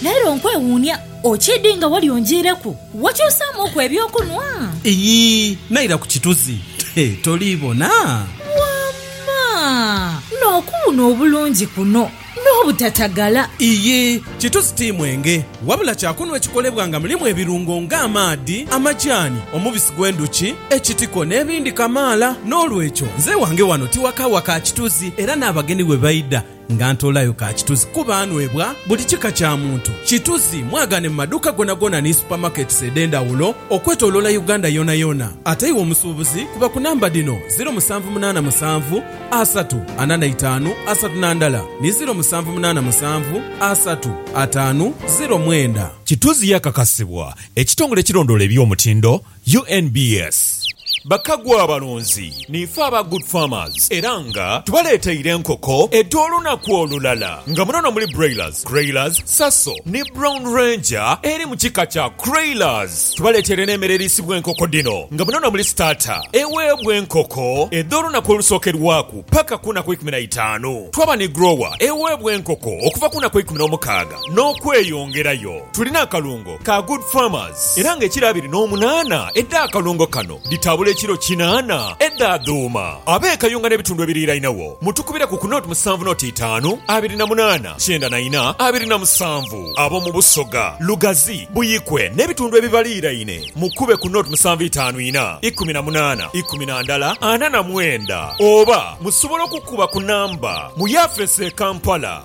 Leero nkwewuunia okiidhi nga wali onjiireku wakyusaamuuku eby'okunwa. Iyii, naira ku kituzi. He, toli bona? Wamma! N'okuwuna obulungi kuno n'obutatagala! Iyii, kituzi ti mwenge, wabula kyakunwa ekikolebwa nga mulimu ebirungo nga amaadhi, amajaani, omubisi gw'endhuki, ekitiko n'ebindi kamaala. N'olwekyo, nze ewange wano ti waka wa ka kituzi era n'abagenyi bwe baidha, Nga ntoolayo ka kituzi kuba anwebwa buli kika kya muntu. Kituzi mwagaane mu maduuka goonagoona ni supermarkets edh'endhawulo okwetoloola Uganda yoonayoona. Ate iwe omusuubuzi kuba ku namba dhino, ziro musanvu munaana musanvu, asatu, ana na itaanu, asatu na ndala ni ziro musanvu munaana musanvu, asatu, ataanu, ziro mwenda. Kituzi yakakasibwa ekitongole ekirondoola eby'omutindo UNBS, Bakagwa abalunzi niife aba Good Farmers era nga tubaleteire enkoko edh'olunaku olulala nga munono muli Broilers, Creilers, Saso ni Brown Ranger eri mu kika kya Creilers. Tubaleteire n'emere eriisibwa enkoko dhino nga munono muli Starter eweebwa enkoko edh'olunaku olusookerwaku paka ku naku eikumi na itaanu. Twaba ni Grower eweebwa enkoko okuva ku naku eikumi n'omukaaga n'okweyongerayo. Tulina akalungo. ka Good Farmers era nga ekiro abiri n'omunaana edha akalungo kano dhitabula ekiro kinaana edha dhuuma. Ab'e Kayunga n'ebitundu ebiriirainagho mutukubire ku ku nought musanvu nought itaanu abiri na munaana kyenda na ina abiri na musanvu. Ab'omu Busoga, Lugazi, Buikwe n'ebitundu ebibaliiraine mukube ku nought musanvu itaanu ina ikumi na munaana ikumi na ndala ana na mwenda oba musobola okukuba ku namba mu yafeesi e Kampala.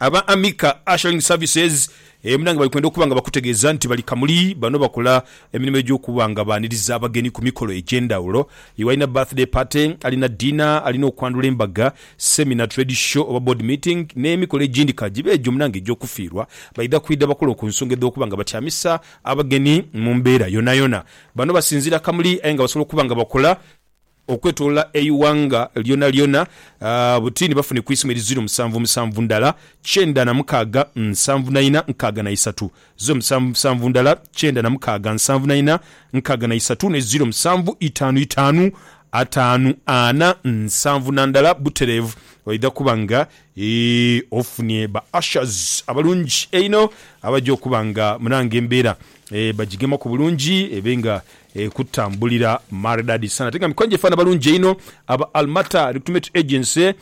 Aba Amica Ushering Services e Munange bali kwenda okuba nga bakutegeeza nti bali Kamuli. Bano bakola emirimo egy'okuba nga baaniriza abagenyi ku mikolo egy'endhawulo. Iwe alina birthday party, alina dinner, alina okwandhula embaga, seminar, trade show oba board meeting n'emikolo egindi ka gibe egyo munange egy'okufiirwa, baidha kwidha bakole ku nsonga edh'okuba nga batyamisa abagenyi mu mbeera yonayona. Bano basinziira Kamuli aye nga basobola okuba nga bakola. okwetolola eighanga lyonalyona, buti ni bafune ku isimu eri ziro musanvu musanvu ndala kyenda na mukaaga nsanvu na ina nkaaga na isatu, ziro musanvu musanvu ndala kyenda na mukaaga nsanvu na ina nkaaga na isatu ne ziro musanvu itaanu itaanu ataanu ana nsanvu na ndala butereevu. Oidha kuba nga ofunye ba ushers abalungi einho abaja okuba nga munange embeera bagigemaku bulungi ebe nga Ekutambulira maridadi sana ate nga mikono gyefaana balungi einho aba Almata Recruitment Agency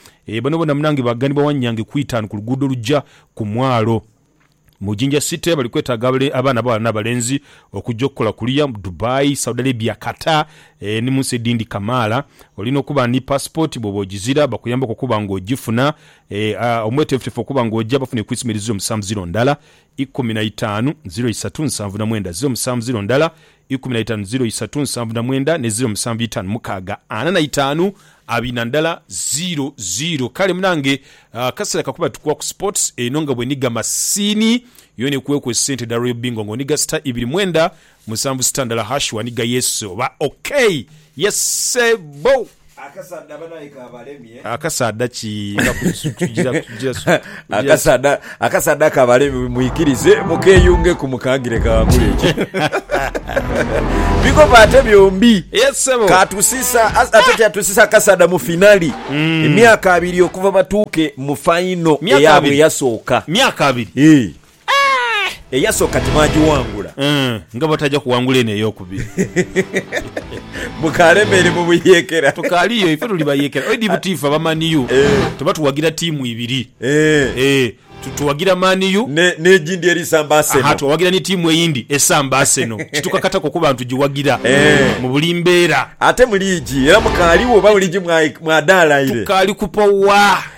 bano bona munange baganibwa wanyange ku itaanu ku luguudo oluja ku mwaalo mu Jinja City bali kwetaaga abaana abaghala n'abalenzi okuja okukola kuliya mu Dubai, Saudi Arabia, Qatar ni munsi edindi kamaala. Olina okuba ni passport bwoba ogizira bakuyambeku okuba nga ogifuna. Omwetefutefu okuba nga oja bafune ku isomero eziri omusanvu ziro ndala ikumi na itaanu, ziro isatu, nsanvu na mwenda, ziro musanvu, ziro ndala, ikumi na itaanu, ziro isatu, nsanvu na mwenda, ne ziro musanvu itaanu mukaaga, ana na itaanu, abiri na ndala, ziro ziro. Kale munange akasera kakuba tukuwa ku sports eno nga bwenhiga masiini yona ekuweku esente edha Royal Bingo nga onhiga star ibiri mwenda Musanvu sita ndala hash wani ga yesu oba okay yes sebbo. Akasaadha banaye kabalemye. Akasaadha ki nga kutujira kutujira kutujira. Akasaadha kabalemye mwikirize mukeyungeku mukangire kaghangule ekyo big up ate byombi Yes sebo. katusiisa as- ate kyatusiisa akasaadha mu finali emyaka abiri okuva batuuke mu final Myaka eyabwe abiri. eyasooka Myaka abiri. Eh, Eyasooka tibaagiwangula. Nga bataja kuwangula eno ey'okubiri. Mukaalemeere mu buyeekera. Tukaali yo, ife tuli bayeekera. Edi buti ife aba Man U tuba tuwagira tiimu ibiri. Tuwagira Man U. N'egindi eri samba Arsenal. Aha, tuwagira ni tiimu eyindi esamba Arsenal. Kitukakataku okuba nti tugiwagira mu buli mbeera. Ate mu liigi era mukaaliwo oba mu liigi mwadaalaire? Tukaali kupowa.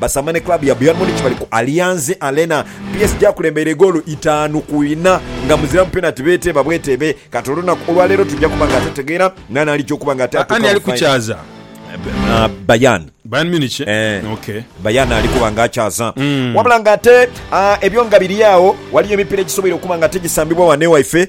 Basaama ni club ya Bayern Munich bali ku Allianz Arena. PSG akulembeire goolo itaanu ku inha nga muzira mu penati beeteeba bweteebe. Kati olunaku olwaleero tuja kuba nga tutegeera naani alija okuba nga ate atuuka mu final. Ani ali kukyaza? Bayern. Bayern Munich? Ok. Bayern ali kuba nga akyaza. Wabula nga ate ebyo nga biri agho, ghaliyo emipira egisoboire okuba nga tigisambibwa ghano ewaife.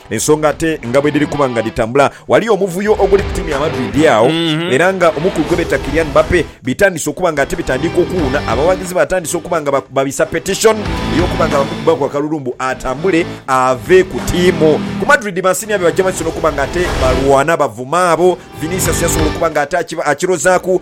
Ensonga ate nga bwedhiri kuba nga dhitambula, ghaliyo omuvuyo oguli ku tiimu ya Madrid agho era nga omukulu gwebeeta Kylian Mbappe bitandise okuba nga ate bitandiika okuwuuna. Abawaagizi batandise okuba nga babisa petition eyokuba nga bamukubbaku akalulu mbu atambule ave ku tiimu. Ku Madrid bansinia be bajja bansi nokuba nga ate balwana bavuma abo Vinicius yasobola okuba nga ate akirozaaku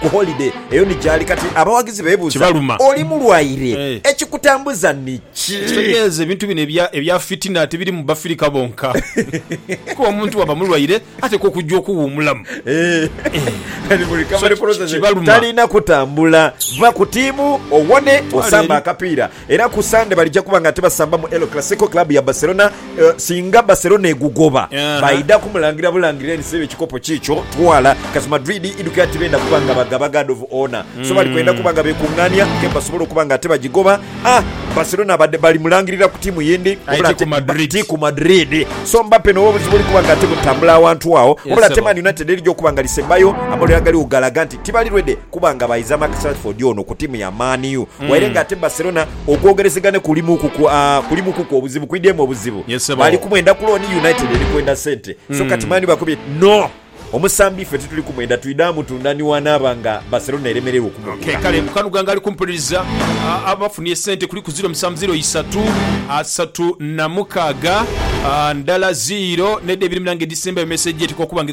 ku holiday eyo ni gyali kati abawagizi bebuuza Kibaluma. oli mulwaire Eh. ekikutambuza niki? Ekitegeeza ebintu bino ebya ebya fitina tibiri mu Bafirika bonka. Kuba omuntu bwaba mulwaire atekwa okujja okuwuumulamu. Eh, kati mu recovery So, ki- process kibaluma. talina kutambula. Va ku tiimu owone osambe akapiira. Era ku Sande balija kuba nga tibasamba mu El Clasico, club ya Barcelona. Singa Barcelona egugoba, baidha kumulangirira bulangirire nti siba ekikopo kiikyo twala, cos Madrid idhukira tibenda kuba nga bagaba guard of honour, so bali kwenda kuba nga bekungaania game basobole okuba nga tibagigoba. A Barcelona abadde bali mulangirira ku tiimu yindi wabula ate ti ku Madrid, so Mbappe n'obuzibu oli kuba nga timutambula awantu agho, wabula ate Man United erija okuba nga lisembayo, amalwire agaligho galaga nti. tibali ready kuba nga baiza Marcus Rashford ono ku tiimu ya Man U waire nga ate Barcelona okwogerezegana kulimuukuku aa kulimuukuku obuzibu kwidhyemu obuzibu. Yes, ssebo. Bali kumwenda ku looni, United eri kwenda sente so kati Man U bakubye no omusambi iffe tituli kumwenda twidha mutunda ni wanaaba nga Barcelona eremererwa Okay, okumugula. kale Mukanhuga nga ali kumpuliriza a, abafunye esente kuliku ziiro musanvu ziiro isatu asatu na mukaaga a, ndala ziiro n'edha ebiri munange edhisembayo mesegi eteekwa okuba nga